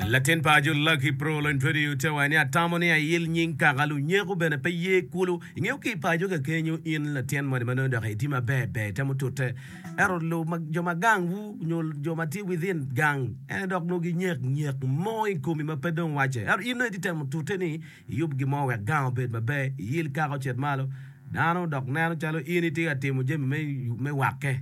Latin paco Lucky Prolony Twediyo te wange ni, Atamo ni ayil nying kaka lunyeko bene pe ye kulu. Ingeyo ki i paco kakenyo in latin moni ma nongo dok itye maber ber itemo tute. Ento lu ma jo ma gang wu nyo jo ma tye within gang ene dok nongo ginyek nyek mo i komi ma pe dong wacce. Ento in nongo itye temo tute ni iyub gin mo wek gang obed maber, iyil kaka ocit malo. Dano dok neno calo in itye ka timo jami me wakke.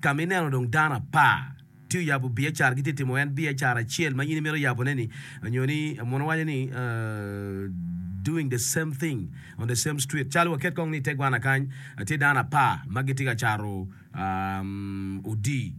Ka ma ineno dong dano apar tye oyabo biacara gitye timo en biacara acel ma in imito yabo ne ni nyo ni munu waco ni doing the same thing on the same street calo waket kong ni ite gwana kany tye dano apar ma gitye ka cato odi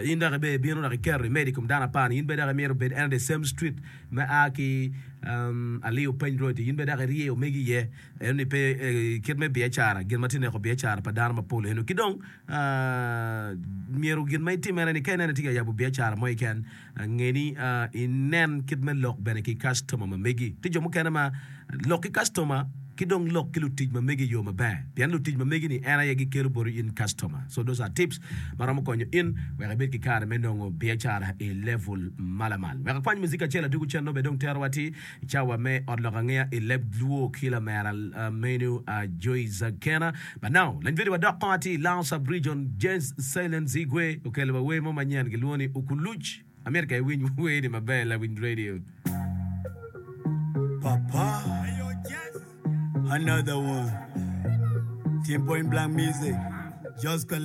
in dok ibe ibino dok iketo imedo ikom dano apar ni in bene dok imito bed en the same street me a ki Aliyo Peng road in bene dok irye omegi iye. Eno ni pe kit me biacara, gin ma tye neko biacara pa dano mapol eno. Ki dong myero gin ma itimmere ni ka ineno itye ka yabo biacara mo keken, nge ni inen kit me lok bene ki kastoma ma megi. Tye jo mukene ma lok ki kastoma ki dong lok ki lutic ma megi i yo maber. Pien lutic ma megi ni en aye gikelo boti in kastoma. So those are tips ma romo konyo in wek ibed ki kare me nongo biacara i level malamal. Wek akwany muzic acel adwogi cen nongo bene dong tero wa atir. I cawa me Ot Lok Angeya i leb Luo ki lamera meno Joy Zagkena Banao, lanywedi wa dok kong atir Lao Sub Region James Sailen Zigwe okelo wa wer mo manyen gilwongo ni Ukuluc amito ka iwiny wer ni maber lawiny radio. Papa another one. Ten point blank music. Just